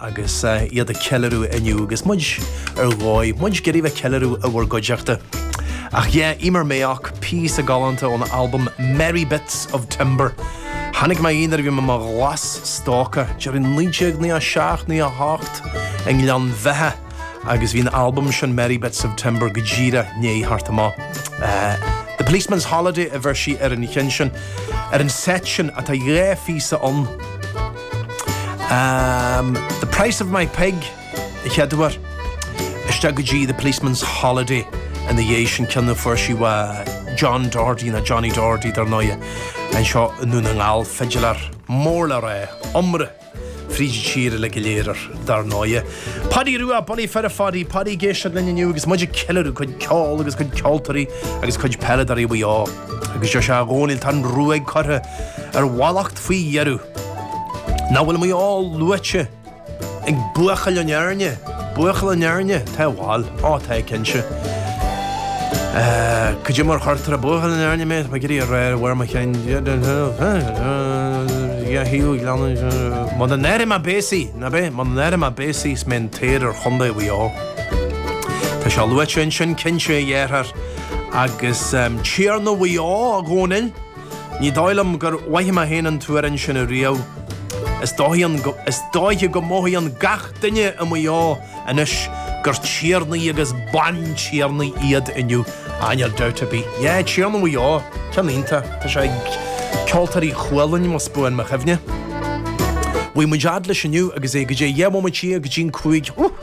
agus iad ag ceiliúradh inniu agus muid ar dhóigh, muid ag iarraidh bheith ag ceiliúradh i bhur gcuideachta. Ach yeah, Emer Mayock, píosa galánta óna albam Merry Bits of Timber. Chonaic mé í nuair a bhí mé i mo ghlas-stócach, deireadh 1997, 98, i nGleann Bheithe agus bhí an albam sin Merry Bits of Timber go díreach i ndiaidh theacht amach. The Policeman's Holiday a bheir sí ar an cheann sin. Ar an seit sin atá dhá phíosa ann. Um, the price of my pig, a chéaduair. Isteach go dtí The Policeman's Holiday ina dhéidh sin cionn a fuair sí ó John Doherty nó Johnny Doherty dar ndóighe anseo i nDún na nGall, fidileár mór le rá, iomrá fríd an tír uile go léir dar ndóighe. Paidí Rua, bulaí fir a Phaidí, Paidí ag éisteacht linn inniu agus muid ag ceiliúradh cuid ceoil agus cuid ceoltóirí agus cuid peileadóirí Mhaigh Eo. Agus seo sé a Dhónaill tá an ruaig curtha ar mhallacht faoi dheireadh. Nach bhfuil Maigh Eo luaite ag Buachaill ón Éirne? Buachaill ón Éirne? Tá bhal. Á tá, cinnte. Caidé mar a chuirtear é, buachaill ón Éirne mé, tá idir rá ar a bhfoirm a chinn. Dhá thaobh an ghleanna. Muna n-athraí mé béasaí, ná beidh? Muna n-athraí mé béasaí is mé an t-oidhre ar chontae Mhaigh Eo. Tá sé luaite ansin, cinnte, a dheartháir. Agus Tiarna Mhaigh Eo, a Dhónaill. Ní dóigh liom gur mhoithigh mé féin an t-amhrán sin ariamh. Is dóiche go mothaíonn gach duine i Maigh Eo anois gur tiarnaí agus bantiarnaí iad inniu. Á níl dabht ar bith. Yeah, Tiarna Mhaigh Eo, ceann iontach. Tá sé ag Ceoltóirí Chualainn, más buan mo chuimhne. Bhí muid fhad leis inniu agus é caidé, deich mbomaite go dtí'n cúig.